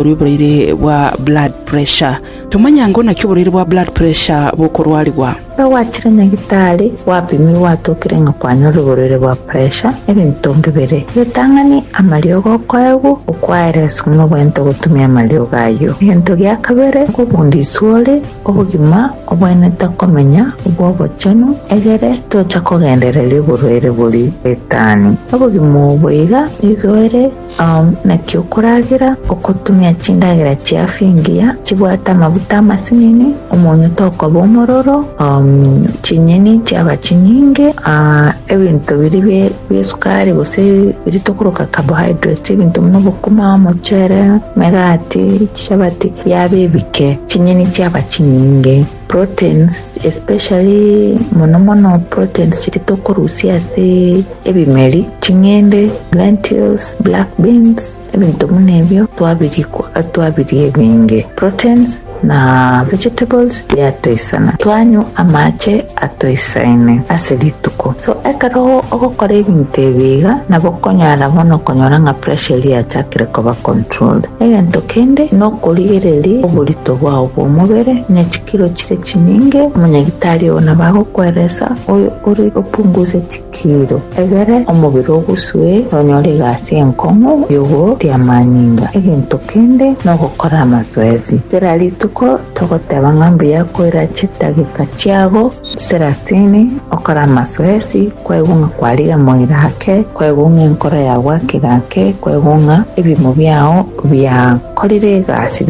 korwa oboraire bwa blood pressure. Tomanya ng'o naki oboraire bwa blood pressure bokorwarigwa. Ekero gwachire nyagitari, gwapimire gwatokire ng'a kwanyore oboraire bwa puresha, ebinto mbibere, egetang'ani, amariogo okoegwa, okwaeresi buna obwenerete ogotumia amariogo ayio. Egento gia kabere nigo obondo iswe ore, obogima, obwenerete komenya, obwo obochenu, egere tocha kogendereria oborwaire boria bw'etani. Obogima obo iga nigo ere. Naki okoragera okotumia chindagera chiafu engiya, chibwate amaguta amasinini, omonyo tokoba omororo, chinyeni chiaba chinyinge, ebinto biria bi'esukari gose biria tokoroka carbohydrates, ebinto buna obokima, omochere, emegati, chapati, biaba ebike, chinyeni chiaba chinyinge. Proteins especially mono mono proteins chiria tokorusia ase ebimeri, ching'ende, lentils, black beans, ebinto buna ebio twabirikwa twabiria ebinge proteins na vegetables biatoisana twanywa amache atoisaine ase rituko. So ekero ogokora ebinto ebi iga nabo okonyara bono okonyora ng'a pressure eria yachakire koba controlled. Egento kende nokorigereria oborito bwao bw'omobere, ne chikiro chire chinyinge, omonyagitari oo nabo agokweresa oyo ore opunguse chikiro, egere omobere ogusue, nonyore egasi enkong'u y'ogotia amanyinga. Egento kende nogokora amasoesi. Kera rituko togoteba ng'a mbuya koira chidageka chiago. Serasini, okore amasoesi, kwaigwa ng'a kwarigia moira ake, kwaigwa ng'a enkoro yao gwakira ake, kwaigwa ng'a ebiimo biao biakorire egasi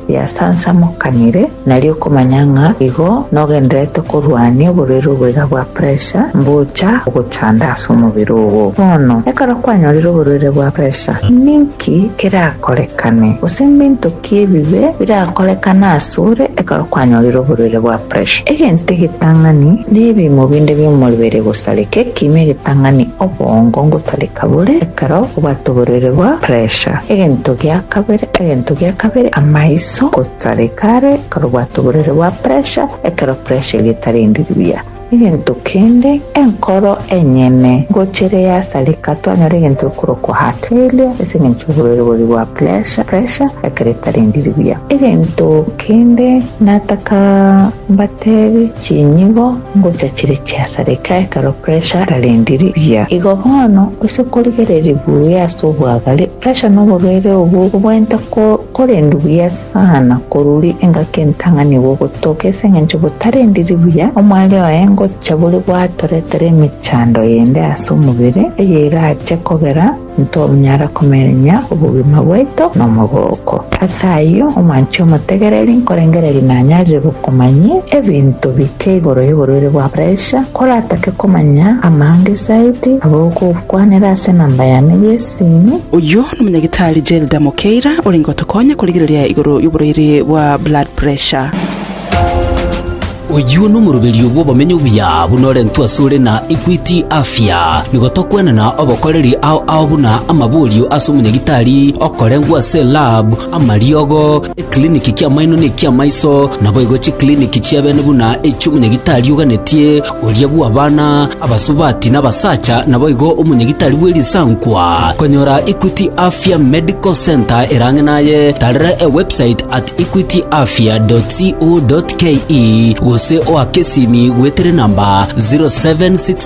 biasansamokanire, nari okomanya ng'a igo nogendererete korwania oborwaire oboiga bwa pressure mbocha ogochanda ase omobere ogo. Bono, ekero kwanyorire oborwaire bwa pressure, ninki kerakorekane, gose ninto ki? Ki ebibe birankorekana asore ekero kwanyorire oborwaire bwa pressure? Egento egetang'ani nebimo binde bi'omoribere gosareka ekiimo egetang'ani obongo ngosareka bore ekero obwate oborwaire bwa pressure. Egento gia kabere egento gia kabere amaiso gosareka are ekero obwate oborwaire bwa pressure ekero pressure eria etari endiiri buya. Egento kende, enkoro enyene ngochire yasareka, twanyora egento gekorokwa heart failure ase engencho y'oborwaire boria bwa pressure, pressure, ekero etarendiri buya. Egento kende nataka mbatebe, chinyigo ngocha chire chiasareka ekero pressure etarendiri buya. Igo bono, gose korigereria buya ase obwagare, Resha noborwaire obwo bobweento korendu buya sana koruri engaki entang'ani bogotoka ase engencho botarendiri buya omware oye ngocha bore gwatoretere emechando yende ase omobere eyerache kogera ntonyara komerenya obogima bwaito nomogooko. Ase ayio omwanchi omotegereri nkorengereria nanyarire gokomanyia ebinto bike igoro yoborwaire bwa presha koratake komanya amanga esaidi abogokwanera ase enamba yane yesimu. Oyio nomonyagitari Gelda Mokeira orenge gotokonya korigereria igoro yoborwaire bwa blood pressure. Oyio nomoroberio bw'obomenyo obuya buna orentwe asore na Equity Afya. Nigo tokwenana obokoreri ao ao buna amaborio ase omonyagitari okorengwa ase lab, amariogo, Ekliniki ki'amaino ne eki'amaiso, naboigo chikliniki chi'abene buna echi'omonyagitari oganetie, oria bw'abana, abasubati, na abasacha, naboigo omonyagitari bwe risankwa. Konyora Equity Afya Medical Centre ere ang'e naye, tarera ewebsite at equityafya.co.ke gose oake esimi goetera enamba 0767